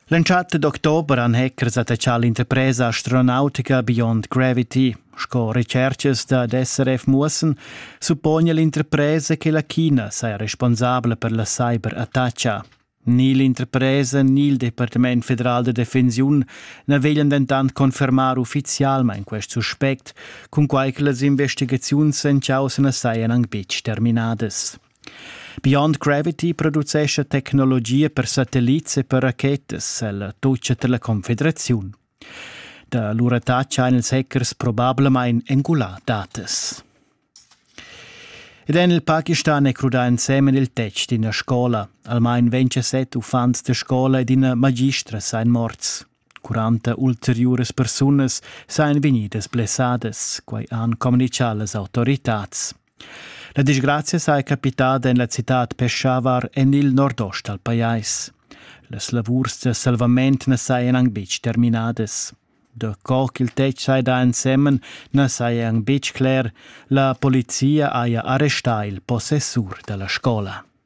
L'entschatta d'october han hackers attachà l'interpresa astronautica Beyond Gravity. Sco recerchas dad SRF muossan, suppone l'interpresa che la China saja responsabla per la cyberattacca. Ni l'interpresa ni il Departament federal da defensiun na veglian dentant confermar uffizialmain quest suspect, cunquai che las investigaziuns en chaussa na sajan anc betg terminadas. Beyond Gravity producescha tecnologia per satellits e per rachetas ella tutscha dalla Confederaziun. Da lura tacha ein ils hackers probablamain engulà datas. Ed en il Pakistan è crudà ensemen il tetg d'ina scola. Almain 27 uffants da scola ed ina magistra seien morts. 40 ulteriuras persunas seien vegnidas blessadas, quai han communichà las autoritads. La disgrazia saja capitada en la citad Peshawar en il nordost dal pajais. Las lavurs da salvament na sajan anc betg terminadas. Da co ch'il tetg saja ensemen na saja anc betg cler. La polizia haja arrestà il possessur da la scola.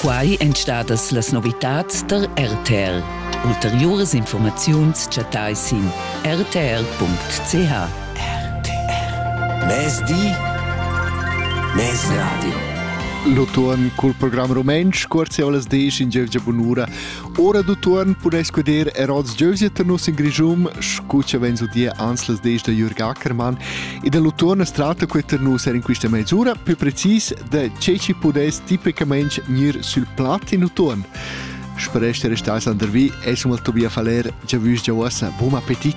Quai èn stadas las novitads tar RTR. Ulteriuras informaziuns chattai sin rtr.ch. RTR. Mezdi, mezradio. L'utuon cul program rumantsch Cuorzeolas disch in giövgia bunura. Ora d'utuon pudais guder er oz giövgia tar nus in Grischum, scuccia vens udia ans las disch da Jürg Ackermann. E dall'utuon as tratta que tar nus er in quista mezz'ura, più precis da che ci pudess tipicamente gnir sul plat in utuon. Spero che restasse under vi e sum al Tobia Faler, già vus già uossa, buon appetit!